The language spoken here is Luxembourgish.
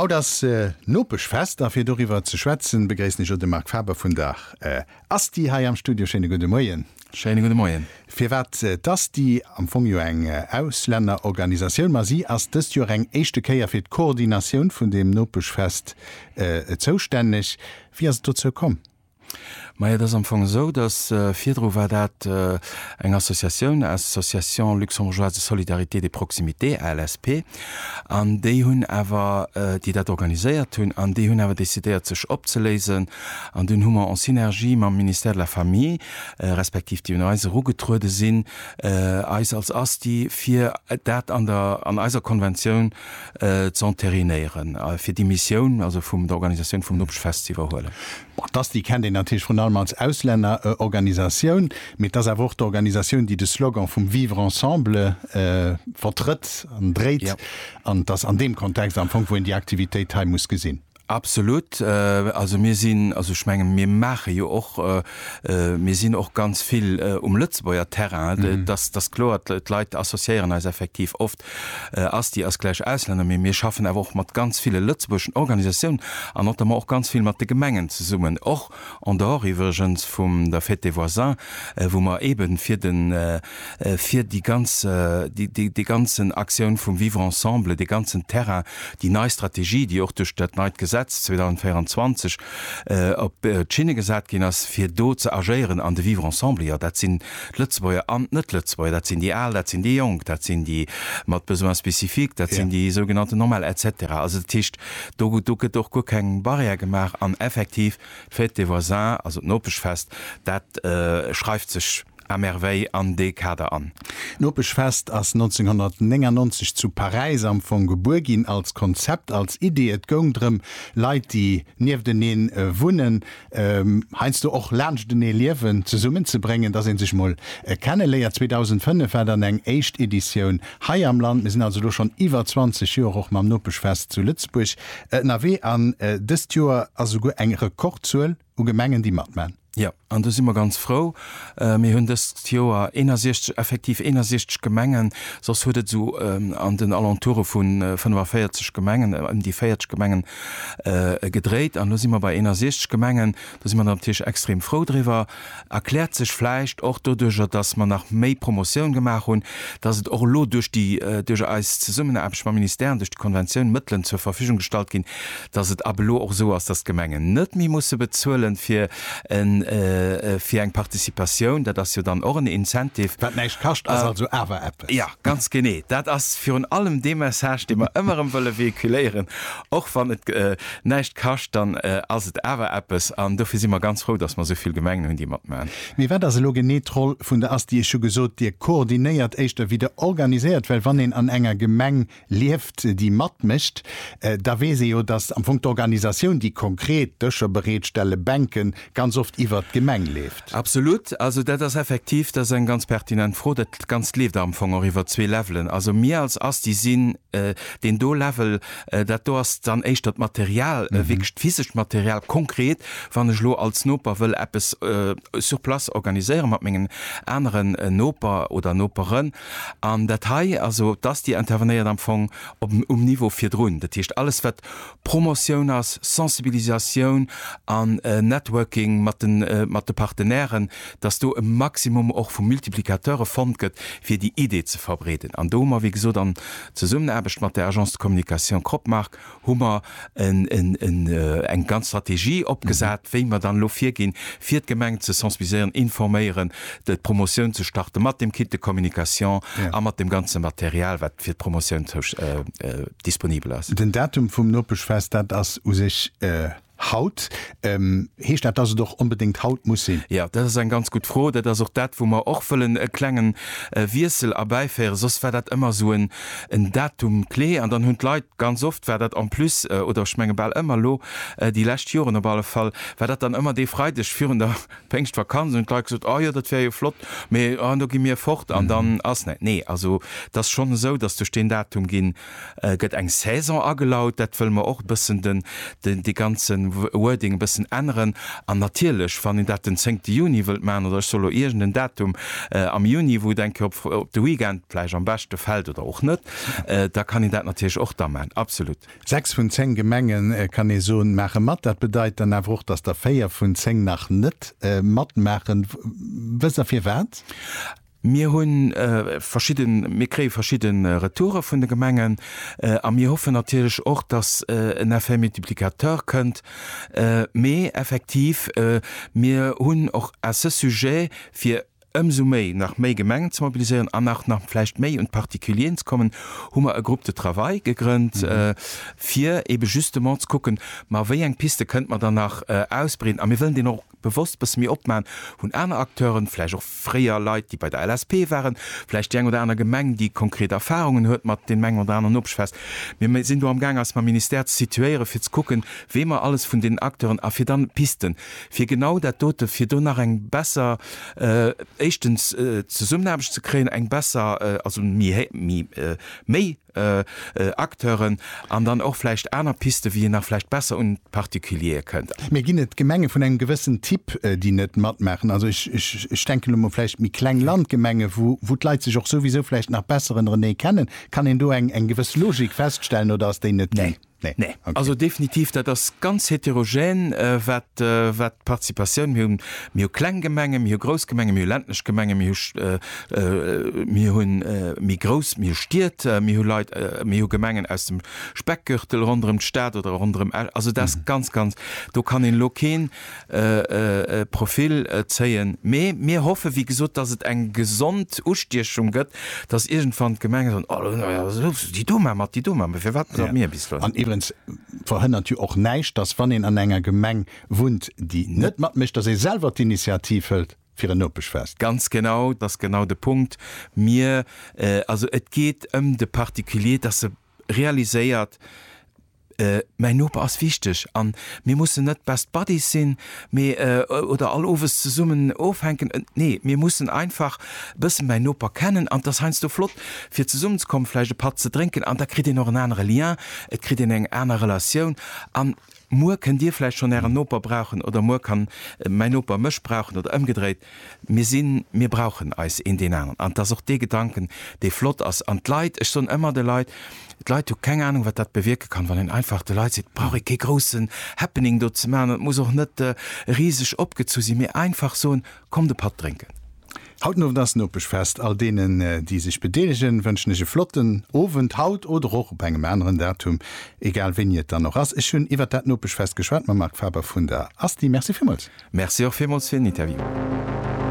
Haut ass Nopeschfest a fir doriwwer ze schwätzen, begréissen ech elo de Marc Faber vun der Asti hei am Studio. Schéine gudde Moien. Schéine gudde Moien. Firwat d'Asti, am Fong jo eng Auslännerorganisatioun, ma si ass dëst Joer eng éischte Kéier fir d'Koordinatioun vun deem Nopeschfest zoustänneg. Wéi ass et dozou komm? Majo, et ass am Fong esou, datt virdru war dat eng Associatioun, Association luxembourgeoise de solidarité, de proximité, ALSP, an déi hunn awer, déi dat organiséiert hunn, an déi hunn awer decidéiert, sech opzeléisen. An dunn hu mer en synergie mam Ministère de la Famille, respektiv déi un eis erugetruede sinn, eis als ASTI, fir dat an der, an eiser Konventioun, z'enterinéieren, fir déi Missioun also vum der Organisatioun vum Nopechfest z'iwwerhuelen. Bon, d'ASTI kennt een natierlech vrun allem als Auslännerorganisatioun, mee et ass awer och d'Organisatioun, déi de Slogan vum Vivre ensemble vertrëtt an dréit. An et ass an deem Kontext am Fong, wou een déi Aktivitéit hei muss gesinn. Absolut. Also mir sinn, also ech menge mir maache jo och, mir sinn och ganz vill um Lëtzebuerger Terrain, dass dass kloer d'Leit associéieren eis effektiv oft, Asti ass gläich Auslänner, mee mir schaffen awer och mat ganz ville lëtzebuergeschen Organisatiounen an notamment och ganz vill mat de Gemengen zesummen, och En dehors iwwregens vum der Fête des voisins, wou mer eben fir de, fir déi ganz, déi, déi ganzen Aktioun vum Vivre ensemble, dee ganzen Terrain, déi nei Strategie, déi och duerch dat neit Gesetz 2024 op d'Schinne gesat ginn ass, fir do ze agéieren an de Vivre ensemble, jo, dat sinn d'Lëtzebuerger an d'Net-Lëtzebuerger, dat sinn déi Al, dat sinn déi Jonk, dat sinn déi mat Besoins spécifiques, dat sinn déi sougenannten Normal, et cetera. Also dat heescht, Do gëtt och guer keng Barrière gemaach an effektiv, d'Fête des voisins, also d'Nopeschfest, dat schreift sech à merveille an dee Kader an. D'Nopeschfest ass 1999 zu Paräis am Fong gebuer ginn, als Konzept, als Idee. Et goung drëm, Leit, déi nieftenee wunnen, heiansdo och laanschtenee liewen, zesummen ze bréngen, dass ee sech mol kenne léiert. 2005 war dann eng éischt Editioun hei am Land. Mir sinn also elo schonn iwwer 20 Joer och mam Nopeschfest zu Lëtzebuerg ënnerwee an dëst Joer ass esouguer eng Rekordzuel u Gemengen, déi matman. Jo, an do si mer ganz frou. Mir hunn dëst Joer 61, effektiv 61 Gemengen, soss huet et esou an den Alentoure vu 45 Gemengen, ëm déi 40 Gemengen gedréit. An elo si mer bei 61 Gemengen. Do si mer natierlech extrem frou driwwer. Erkläert sech vläicht och doduercher, datt mer nach méi Promotioun gemaach hunn, datt et och elo duerch déi, duerch eis Zesummenaarbecht mam Ministère an duerch déi Konventioun Mëttelen zur Verfügung gestallt ginn, datt et ab elo och esou ass, datt d'Gemengen net méi musse bezuelen, fir fir eng Participatioun, dat ass jo dann och en Incentive. Wat näischt kascht, ass also awer eppes. Jo, ganz genee. Dat ass virun allem dee Message, dee mer ëmmer erëm wëlle véhiculéieren, Och wann et näischt kascht, dann ass et awer eppes. An dofir si mer ganz frou, datt mer esou vill Gemengen hunn, déi matmachen. Mee wat ass elo genee d'Roll vun der ASTI? Ech hu gesot, Dir koordinéiert éischter wéi Der organiséiert, well wann een an enger Gemeng lieft, déi matmécht, da weess ee jo, datt am Fong d'Organisatioun, déi konkret Dëscher bereetstellen, Bänken, ganz oft iwwert d'Gemeng leeft. Absolut. Also dat ass effektiv, dat ass eng ganz pertinent Fro. Dat Ganzt leeft am Fong och iwwer zwee Levelen. Also mir als Asti sinn deen do Level. Dat do ass dann éischter d'Material, wierklech d'physescht Material, konkret, wann ech elo als Noper wëll eppes sur place organiséiere mat mengen aneren Noper oder Noperen, An dat hei, also d'ASTI intervenéiert am Fong op um Niveau virdrun, dat heescht alles wat Promotioun ass, Sensibilisatioun an Networking mat de mat de Partenairen, datt do e Maximum och vu Multiplicateure fonnt gëtt fir déi Idee ze verbreeden. An do hu mer, wéi gesot, an Zesummenaarbecht mat der Agence de communication Cropmark hu mer eng ganz Strategie opgesat, wéi mer dann elo virginn, fir d'Gemengen ze sensibiliséieren, informéieren, d'Promotioun ze starten, mat dem Kit de communication a mat dem ganze Material, wat fir d'Promotioun disponibel ass. Den Datum vum Nopeschfest, dat ass u sech. Haut? Heescht dat, dass et och onbedéngt haut muss sinn? Jo, dat ass eng ganz gutt Fro. Dat ass och dat, wou mer och wëllen e klengen Wiessel erbäiféieren. Soss war dat ëmmer esou en Datum clé an dann hunn d'Leit, ganz oft war dat en plus, oder ech menge bal ëmmer elo, déi lescht Joren op alle Fall, war dat dann ëmmer dee Freideg virun der Péngschtvakanz, hunn d'Leit gesot, oh jo, dat wär jo flott, mee, oh, do gi mir fort an dann ass näi. Nee, also et ass schonn esou, dass duerch deen Datum ginn. gëtt eng Saison agelaut, dat wëlle mer och e bëssen den, dee ganze Wording e bëssen änneren. An natierlech, wann een dat den zéngte Juni wëllt maachen, oder ech soll elo iergend en Datum am Juni, wou et eng Kéier op de Weekend vläicht am beschte fält oder och net, da kann een dat natierlech och da maachen, absolut. Sechs vun zéng Gemenge kann ee soen, maache mat. Dat bedeit dann awer och, datt der véier vun zéng nach net matmaachen. Wësst Der firwat? Mir hunn verschidden, mir kréie verschidde Retoure vun de Gemengen a mir hoffen natierlech och, dass en Effet multiplicateur kënnt. Mee effektiv, mir hunn och à ce sujet, fir ëmsou méi nach méi Gemengen ze mobiliséieren an nach nach vläicht méi un d'Particulieren ze kommen, hu mer e Groupe de travail gegrënnt, fir eebe justement ze kucken, ma wéi eng Piste kënnte mer dann nach ausbreeden. A mir wëllen deen och bewosst bësse méi opman, hunn aner Acteuren, vläicht och fréier Leit, déi bei der LSP waren, vläicht déi eng oder aner Gemeng, déi konkret Erfarungen huet mat deem engen oder aneren opgeschwätzt. Mir sinn do amgaang eis mam Ministère ze situéieren, fir ze kucken, wee mer alles vun deenen Acteuren, a fir da Pisten, fir genau dat dote, fir do nach eng besser, éischtens Zesummenaarbecht ze kréien, eng besser, also méi, méi, méi. Acteuren an dann och vläicht aner Pisten, wéi een nach vläicht besser un d'Particuliere kënnt. Mir ginn et Gemenge vun engem gewëssen Typ, déi net matmaachen. Also ech denken elo mol vläicht méi kleng Landgemenge, wou d'Leit sech och souwisou vläicht nach besser ënnerenee kennen. Kann een do eng gewëss Logik feststellen oder ass déi net ginn? Nee. Nee, also definitiv, dat ass ganz heterogène wat d'Participatioun, mir hunn, mir hu kleng Gemengen, mir hu grouss Gemengen, mir hu ländlech Gemengen, mir hu, mir hunn méi grouss, mir hu Stied, mir hu Leit, mir hu Gemengen aus dem Speckgürtel ronderëm d'Stad oder ronderëm, also dat ass ganz, ganz, do kann een elo keen. Profil zéien. Mee mir hoffe wéi gesot, datt et eng gesond Ustiechung gëtt, datt iergendwann d'Gemenge soen, oh lo jo, souss, déi do, mä mat déi do, mä firwat grad mir bis lo? An iwwerens verhënnert jo och näischt, datt wann een an enger Gemeng wunnt, déi net matmécht, datt ee selwer d'Initiativ hëlt fir en Nopeschfest. Ganz genau, dat ass genau de Punkt. Mir, also et geet ëm de Particulier, datt e realiséiert, mäin Noper ass wichteg an mir mussen net best buddies sinn, mee oder all owes zesummen ofhänken, nee mir mussen einfach e bësse mäin Noper kennen an et ass heiansdo flott fir zesummen ze kommen, vläicht e Patt ze drénken an da kritt een och en anere Lien, et kritt een eng aner Relatioun an Muer kënnt Dir vläicht schonn Ären Noper brauchen oder muer kann mäin Noper mech brauchen oder ëmgedréit. Mir sinn, mir brauchen eis een deen aneren. An et ass och dee Gedanken, dee flott ass. An d'Leit, ech soen ëmmer de Leit, d'Leit hu keng Anung, wat dat bewierke kann, wann een einfach de Leit seet, et brauch ee kee groussen Happening do ze maachen an et muss och net riseg opgezu sinn, mee einfach soen, Komm de Patt drénken! Haut Nowend ass Nopeschfest. All deenen, déi sech bedeelegen, wënschen ech e flotten Owend, haut oder och op engem aneren Datum, egal wéini et dann och ass. Ech hunn iwwert dat Nopeschfest geschwat mam Marc Faber vun der ASTI. Merci villmools. Merci och villmools fir den Interview.